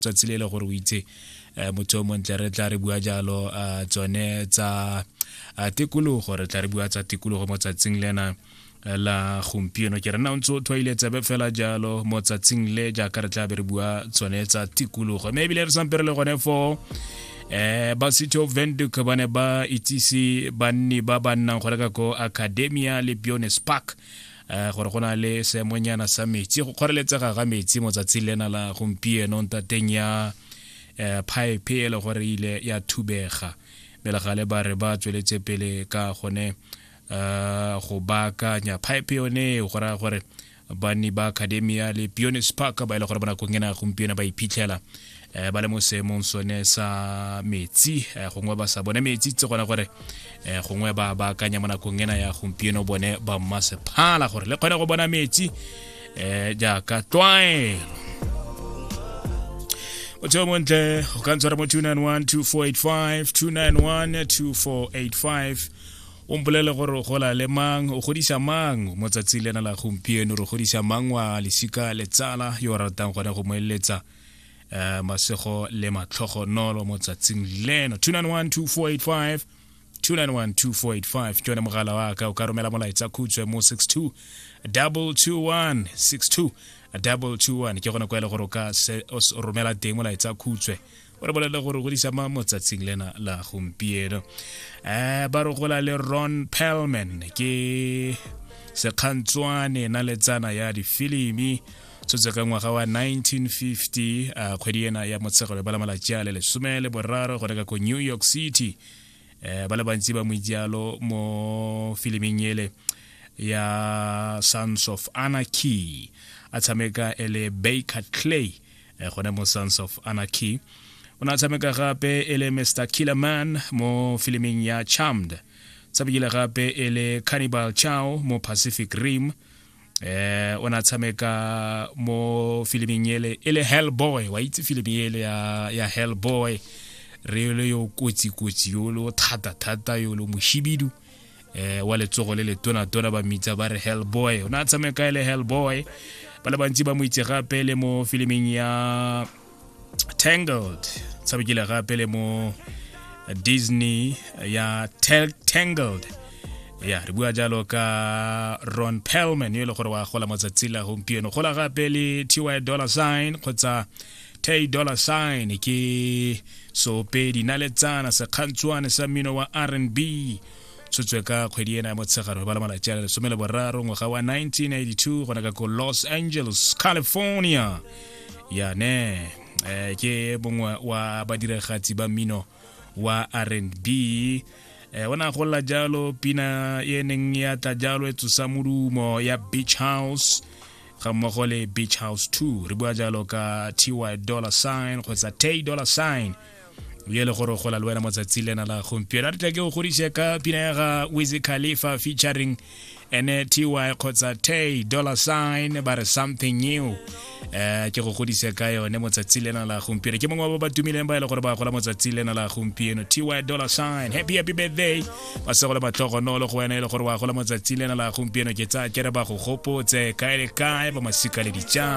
tsatsi le le gore o itse um motho o montle re tla re bua jalo um tsone tsa tikologo re tla re bua tsa tikologo mo tsatsing lena la gompieno ke re nna o ntse o tshwaile tsebe fela jalo mo tsatsing le jaaka re tla be re bua tsone tsa tikologo mme ebile re sampere le gone foo eh ba sitho venduk ba ne ba itsise banni ba ba nnang go reka ko academia le biones park um gore go na le seemonyana sa metsi go kgoreletsega ga metsi motsatsing lena la gompieno ntateng ya um pipe e le gore e ile ya thubega melegale ba re ba tsweletse pele ka gone um go baakanya pipe yone eo go raya gore banni ba academia le pionis park ba e le gore bonakong ena gompieno ba iphitlhela um ba le mo seemong sone sa metsi um gongwe ba sa bone metsi tse gona gore um gongwe ba ba akanya mo nakong ena ya gompieno bone ba mmasephala gore le kgone go bona metsi um jaaka tlwaelo motho yo montle o ka ntshwara mo 291 2485 291 2485 o mpolele gore o gola le mang o godisa mang mo tsatsi lena la gompieno re godisa mang wa lesika letsala yo o ratang gone go mo eletsa uh, masego le matlhogo nolo mo tsatsing leno 2912485 2912485 ke yone mogala wa ka o ka romela molaetsa khutshwe mo 62 221 62 221 ke gone kwa e le gore o ka romela teng molaetsa khutshwe o re bolelele gore go disa mo tsatsing lena la gompieno um ba re gola le ron pelman ke sekgantswane na letsana ya difilimi tshotse ka ngwaga wa 1950 a kgwedi ena ya motshegelo ba la malatsi a le lesome le boraro go reka ko new york city um ba le bantsi ba moijalo mo filiming ele ya sons of anarchy a tshameka e le baker clay um gone mo sons of anarchy o ne a tshameka gape e le mr killerman mo filiming ya charmed tshamekile gape e le cannibal chow mo pacific rim eh o na tshameka mo filiming ele e le hellboy wa itse filimi ele ya ya hellboy re le yo kotsi kotsi yo lo thata thata yo lo moshibidu eh wa letsogo le letona tona ba mitsa ba re hellboy o na tshameka ele hellboy ba le bantsi ba mo itse gape le mo filiming ya tangled tshabekile gape le mo disney ya tangled ya re bua jalo ka ron pelman yo e le gore wa gola matsatsi la gompieno gola gape le ty dollar sign kgotsa tay dollar sign ke sopedi naletsana sekgantshwane sa mmino wa r n b tshotswe ka kgwedi ena ya motshegare ba le malatsi a le lesome le boraro ngwaga wa 1982 gona ka ko los angeles california ya ne eh, ke mongwe wa badiragatsi ba mmino wa r&b eh, o ne a golela jalo pina e neng ya tla jalo e tsosa modumo ya beach house ga mmogo le beach house 2 re bua jalo ka ty dollar sign kgotsa tay dollar sign ye le gore gola le wena motsatsi lena la gompieno a re tla ke o godise ka pina ya ga wizy khalifa featuring ene ty kgotsa tay dollar sign ba re something new um ke go godise ka yone motsatsi lena la gompieno ke mongwe wa ba ba tumileng ba e le gore ba gola motsatsi lena la gompieno ty dollar sign happy happy birthday ba se gole batlhogonolo go wena e le gore wa gola motsatsi lena la gompieno ke tsaya kere ba go gopotse kae le kae ba masika le dijang